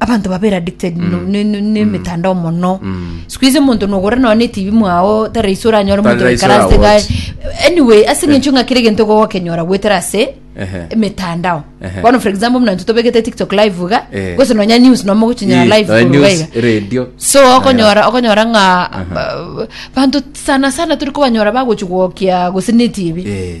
abanto babeire addicted no- ne- ne- nemetandao mono sikuizi omonto nogora nonya ne tv mwao tari rahisi oranyore Tari omonto rahisi oikare ase oragotch. ga- anyway ase eng'encho ng'a kera egento gogokenyora goetera ase Ehe. emetandao Ehe. bono for example buna intwe tobegete tiktok live iga Eh. gose nonya news nonya mogochinyora Ii, live nonya korwa news, iga. radio. so okonyora okonyora ng'a ba- banto sana sana turi kobanyora bagochi gwokia gose ne tv Eh,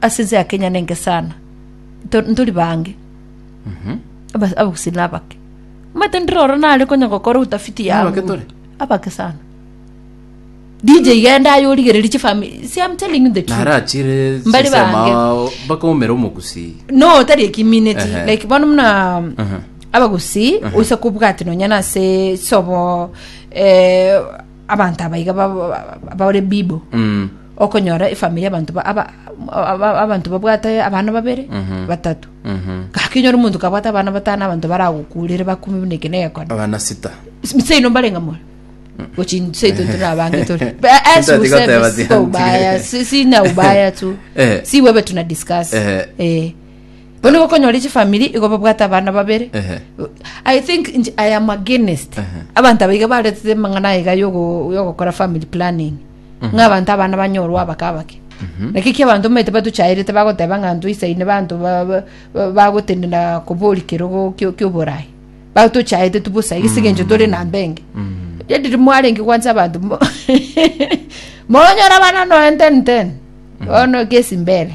ase ense ya Kenya nenge sana Nto- ntori bange Aba- abagusii na abake omanyete ndire oro nare konya gokora utafiti ya Abake tore? abake sana dj genda aye origereri chifami see i'm telling you the truth narachire Mbari sisema bange. ao, mpaka omere omogusii no tari ekimineti Ehe. like bono muna abagusi oisa kobwati nonya nase sobo eh, Abanto abaiga ba- ba- ba- bare bibo, okonyora efamiri y'abanto ba- aba- aba- abanto babwate abana babere, batato. Gaki onyore omonto kabwate abana batano abanto baragokurere bakumi buna eke negekone. abana sita Mseino mbarenga moyo. Gochi nseito tunabange turi. Ba- as Sitati useme, goteba siko tianti. ubaya, si- sina ubaya tu. Eh. Si wewe tuna discuss. Eh. Eh. Bono gokonyore chifamiri igo babwate abana babere Ehe. i think nche i am against Aha. abanto abaiga baretete amang'ana aiga yogo- yogokora family planning ng'a abanto abana banyorwa abake abake naki ki abanto omanyete batuchaerete bagoteba ng'a ntoisaine banto ba- ba- ba- bagotenena kobori kerogo kio- kioborai batuchaete tu bosa gese gencho tore na mbenge yadiri mwarenge kwansa abanto mo- monyora abana noen ten ten bono gesi mbere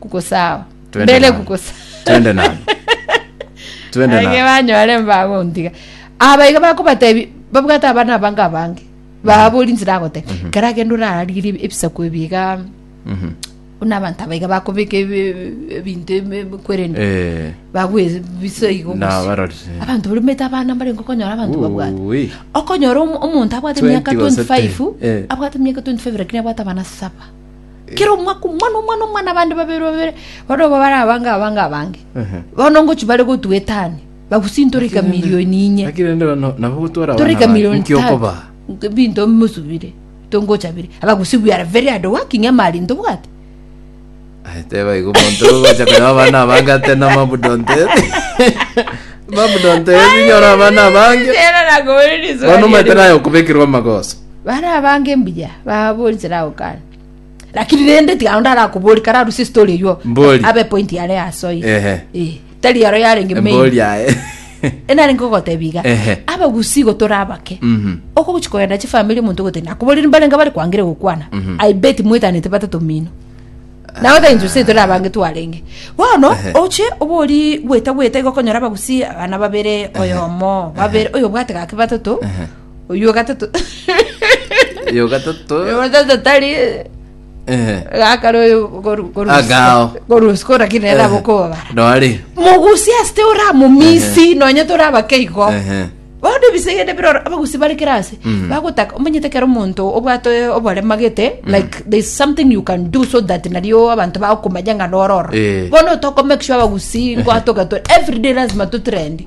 kugusao Twende mbere nani? kugusa Twende nani? Twende nani? banyore mbagontiga aba iga bakobatebi babwate abana abange abange babori nzira agote kera gende orarire ebisaku ebiga Mhm. buna abanto abaiga bakobeka ebi- ebinto ebi- kwerende Eh, bagwe biso igo na gose. barori. abanto barumete abana mbare nkokonyora abanto babwate Ui. okonyora omo- omonto abwate 20 emyaka gose 25 te. Eh. abwate emyaka 25 lakini abwate abana saba kera omwaka omwana omwana omwana abande babere babere bono obo bare abange abange abange Ehe. bono ngochi bare gotua etani bagusintore ikamilioni inye Lakini rende bano nabo gotwara tore abana ba- ikamilioni nki okoba tatu binto mosubire tongochabire abagusi we are very hard working amari ntobwate Aye, teba igo omonto ogocha konya abana abange ate na mabudonto ere mabudonto ere inyora abana abange Era nakobereria iswali bono omanyete ere. naye okobekerwa amagoso Bare abange mbuya baboorire Laokan, lakini rende tiga onde arakoboria kararusie story eywo Mbori. abe point yare asoe Ehe. Eh, tari yaro yarenge main Mbori aye. enarenge ogotebia iga Ehe. abagusi igo tore abake Mhm. okogochi kogenda chifamiri omonto ogote nakoborire mbarenge bare kwangire gokwana i bet mwetanete batato mino nawe the injusi etore abange twarenge bono Ehe. oche obori gweta gweta igokonyora abagusi abana babere oyomo babere oyo bwate gake batato oyio o gatato Oyo gatato. oyio o gatato tari Eh. gakare oyo Agao. korusiko lakini nere abokobabara Nore. mogusi asite oramomisi nonya torabake igo Ehe. bono ebisegende biroro abagusi bare kera ase Mhm. bagotaka omanyete kera omonto obwate oborema gete like there's something you can do so that nario abanto bagokomanya ng'a nororo Eh. bono tokomake sure abagusi ngwatoka to everyday lazima totrendi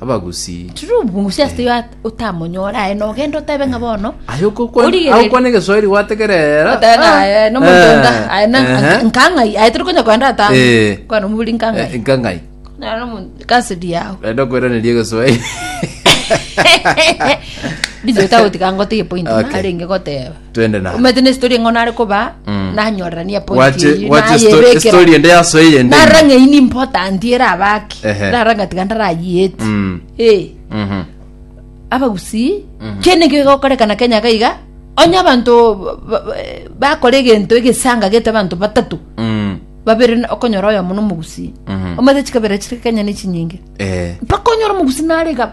abagusii. True mongusii ase yo at- otamonyore aye na ogende otebe ng'a bono Aye okokwana Origereria. agokwana egeswahili gwategerera. Otebe ng'a aye Ah, nomontonga eh, aye na ehe. nkang'ai aye tori konya koenda atano Eh. kwana omoburi Eh, nkang'ai nkangai Naro nomo- kasidi yao renda kweraneria egeswahili biche otagotiga ngotige point Okay. narenge goteba twende naro omanyete na story ng'o nare koba Mm. nanyorerania point Gwache- eyio, gwache sto- nayebekera. story ende yasoe yende narora ng'a iyi ni important ere abaki Ehe. narora ng'a tiga ndarayiyeti Mm, Eh, mhm. abagusii kende nkio igokorekana kenya gaiga onye abanto ba- ba- ba- bakora egento egesanga gete abanto batatu Mm, babere na- okonyora oyo mono omogusii Mhm. omanyete chikabera chire kenya ne chinyinge eh. mpaka onyora omogusii narega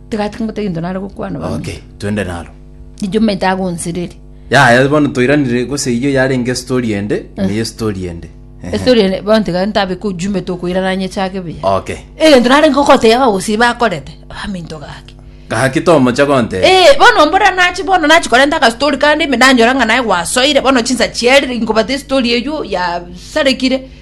Tiga timote gento nare gokwana bang'e. Okay, twende naro. Ijuma itagonsereri. Yaya bono toiranire gose eyio yarenge story ende Eh. neye story ende Ehe. Estori ene bono tiga ntabe ko ijuma tokoirana nyechake buya. okay Egento nare ngokoteba abagusii bakorete abaminto gaki. gaki tomocha gonte Eh, bono mbora nachi bono nachi korenta ka story kandi ime nanyora ng'a naye gwasoire bono chinsa chiere inkobata estory eyio ya sarekire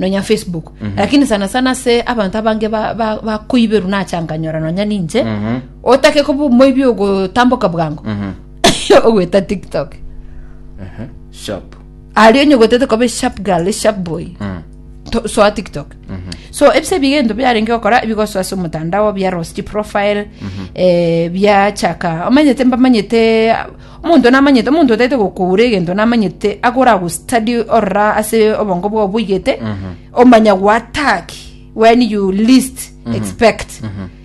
nonya facebook lakini sana sana ase abanto abange ba- ba- bakoiberwa nachanganyora nonya ninche otake koba omoibi ogotamboka bwango ogweta tiktok Ehe, sharp aria onye ogwetete koba sharp girl sharp boy Mm. to- soa tiktok so ebise ebiga ento biarenge gokora ebigosoa ase omotandao bia rosti profile eh, biachaka omanyete mbamanyete Omonto namanyete, omonto otaete gokogura egento namanyete agora agostudy orora ase obongo bwao boigete omanya goattack when you least expect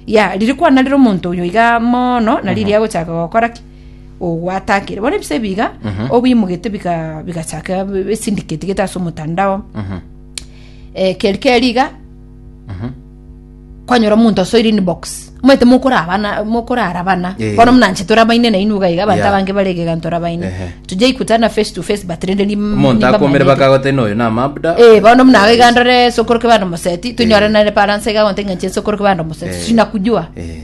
ya riri kwana rire omonto oyo iga mono na riri agochaka gokora ki ogoatakire bono ebisae biga obiimogete biga bigachaka esindicatigete ase omotandao eh, keri keri iga kwanyora omonto asoire inbox omanyete mokorabana mokorarabana Eh. bono muna nche torabaine nainwe iga iga abanto Yeah. abange bare iga iga ntorabaine Ehe. tujai kutana face to face but rende nim- omonto akomere nimbamanyerie. bakagote noyo na mabda Eh, bono muna iga ndore sokoroke bande omoseti tonyore nare paransa iga gonte ng'a nche sokoroke bande omoseti Eh. sinakujua Eh.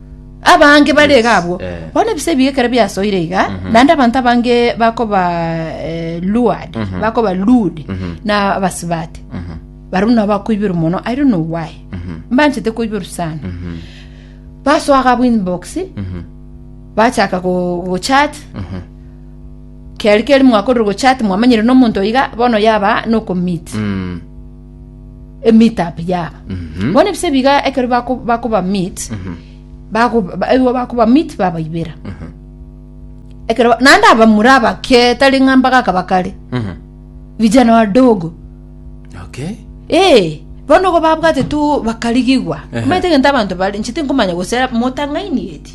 Abange bare iga abwo, bono ebisaku ebi ekero biasoire iga, naende abanto abange bakoba eh, lured, bakoba lured na abasibati. Barabwo nabo bakoiberwa mono, I don't know why. Mbanchete koiberwa sana. Basoa gabo inbox, bachaka go- gochat, keri keri mwakorire gochat mwamanyire nomonto iga bono yaba nokomit emeetup yaba Mhm. bono ebise biga ekero bako- bakoba meet bago- ba- ebigo bakoba meet babaibera ekero ba- naende abamura abake tari ng'a mbagaka bakare Mhm. vijana wadogo Okay. ee bono igo babwate tu bakarigigwa Ehe. omanyete egento abanto bare inche tinkomanya gose motang'aini eti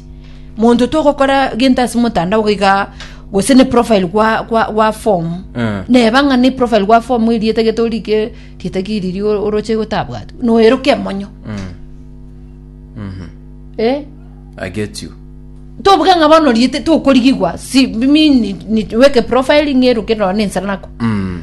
monto togokora gento ase motandao goika gose ne profile gwa gwa gwa form Mm. neba ng'a ne profile gwa form erieta gete orike rieta ki riri o- oroche gotabwati noeroke emonyo eh I get you. tobuga ng'a bono riete tokorigigwa si mimi ni- ni- weke profile ng'eroke nonye ne ensara nako Mm.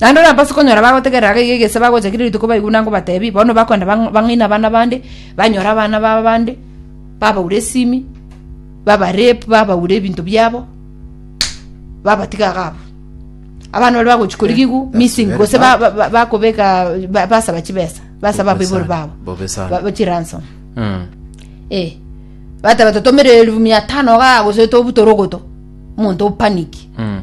Naende onye abasike onyora bagotegerera gaiga egese bagocha kera rituko baigwe na ngobatebi, bono bakoenda bang- bang'aina abana bande, banyore abana ba bande, babaure esimi, babarape, babaure ebinto biabo, babatiga iga abwo. Abana baria bagochi korigigwa that's missing very gose ba- bad. ba- ba- bakobeka ba- basaba chibesa, basaba abaibori babo, Bobe sana. ba- ba- chiransom. Mm. Eh. Bateba totomere elfu mia tano iga gose tobutorogoto, omonto opaniki. Mm.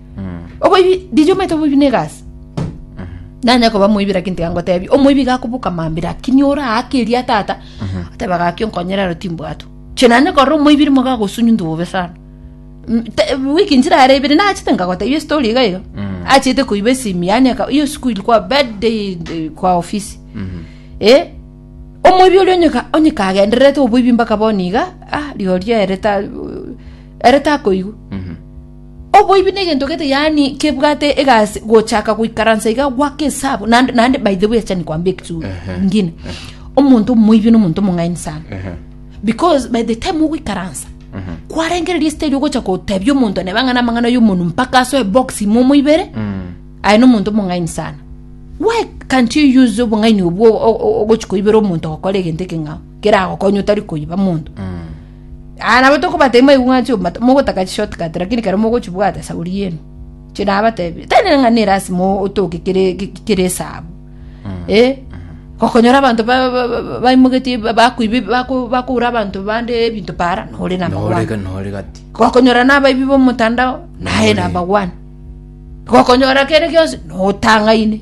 oboibi dije omanyete oboibi na egasi nanya koba moibi lakini tiga ngotebi omoibi gakobuka mambia lakini ore aake eria tata ateba gaki onkonyere aro timbwatu inche nanye korora omoibi rimo gagosunywa into bobe sana Mm, te- wiki nchirare ibere nachete nkagotebia estory iga iga achete koiba esimi yane aka- hiyo siku ilikuwa bad day eh, kwa ofisi eh omoibi oria onyeka onyeka agendererete oboibi mpaka bono iga ah rigorio ere ta ere takoigwa Oboibi negento gete yaani kebwate egasi gochaka goikaransa iga gwake esabu naende naende by the way acha nikwambie ekitu Ehe. ngine omonto omoibi nomonto omong'aini sana Ehe. because by the time ogoikaransa kwarengereria stage ogocha gotebia omonto neba ng'ana amang'ana y'omonu mpaka asoe box ime omoibere Mm. aye nomonto omong'aini sana why can't you use obong'aini obwo o- o- ogochi koibera omonto ogokora egento ekeng'ao keragokonya otari koiba monto Mm. Aa nabo tokobata imwe aigwe ng'a nchio mata- mogotaka chishortcut lakini kero mogochibwata shauri yenu. Inche nabatebirie, tari nere ng'a nerasima o- otoke kere ke- ke- kere esabu. Eh, gokonyora abanto ba- ba- ba- baimogetie ba- bakoiba eb- bako- bakoura abanto bande ebinto para, nore number one. Norega nore gati. gokonyora nabaibi bomotandao naye Ore. namba one gokonyora kere gionsi notang'aine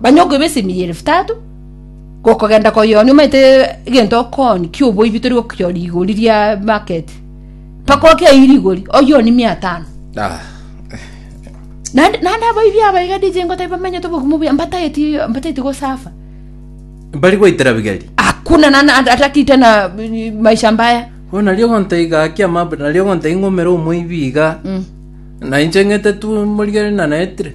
Banywe okoiba esemi y'elifu tatu, gokogenda koyoonia omanyete egento okooni ki'oboibi tori gokionia rigori ria market, mpaka okeiyi rigori oyoonie mia tano. Ah. Naende naende abaibi aba iga DJ ngote bamenyete obogumu buya mbatageti mbatageti gosafa. Mbari gwaitera bigeri. Hakuna na na hataki tena eh, maisha mbaya. Bono nario ogontai gaki amab nario ogontai ng'umera omoibi iga. Na inche ng'ete tu morigere nanaetire.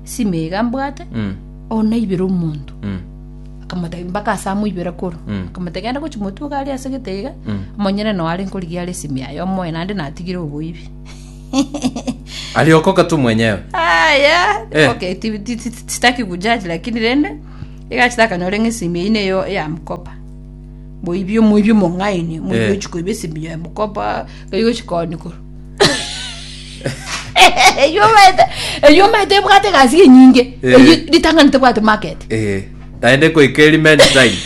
Simega mbwate Mm. onaibera omonto. Mm. Akamotebia mpaka ase amoibere koro. Mm. Akamotebia genda gochi motwe iga aria ase gete iga. Mm. Omonyene noo are nkorigia are esimi yaye omoe naende natigire oboibi. Aliokoka tu mwenyewe. Aya. Eh. Okay, ti- ti- ti- ti- sitaki kujaji lakini rende igachita akanyora ng'a esimi eyio neyo eyamokopa. Moibi omoibi omong'aini, moibi Eh. ochikoiba esimi ya mokopa, igochikoni koro. eyio omanyete eyio omanyete ebwate egasi enyinge Eh. eyio ritang'ani tebwate market Eh, naende goika eri many time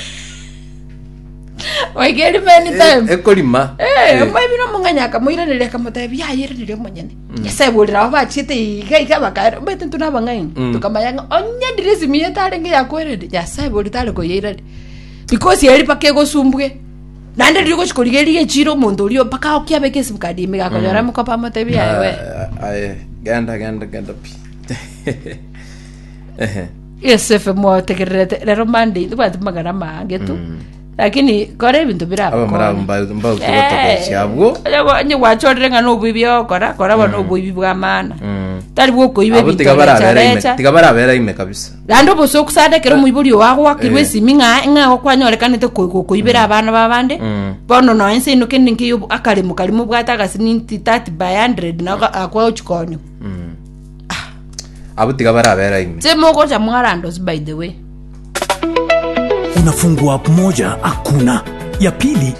oigeri many Eh, time ekorima Eh, Eh, omwami na omong'anya akamoiraneria akamotebia yairaneria omonyene nyasae borera abo bachiete iga iga bakaera omanyete ntwe nabang'aini Mm. tukamanya ng'a onye diresi miyete arenge yakwereri nyasae bori tare koyairari because eri mpaka egosumbwe Naende riria ogochia korigereria echiira omonto oria mpaka aokie abeke esimu card ime iga akonyora amo koba amotebi aye we. Ah, aye, genda genda genda pi Ehe. Yosefe mwategererete rero Monday tobwati magana amange tu lakini kora ebinto bire Aba muri abo mba- mbautu gotogochia abwo. onye gwachorire ng'a noboibi ogokora kora bono oboibi bwa maana Mm. tari bwokoiba Abo ebinto tiga barabera ime- recharecha tiga barabera ime kabisa Naende obosa ogosarete ekero omoibori oo agoakirwe Eh. esimi ng'a ng'a igo kwanyorekanete ko- ko- koibera abana b'abande Mm. bono nonya inse ino kende nkeiyo obo- akaremo karimo obwate agasiminti 30 by 100 na oga- akwa gochi konywa Abwo tiga barabera ime. se mogocha mwarandos by the way Unafungua app moja hakuna ya pili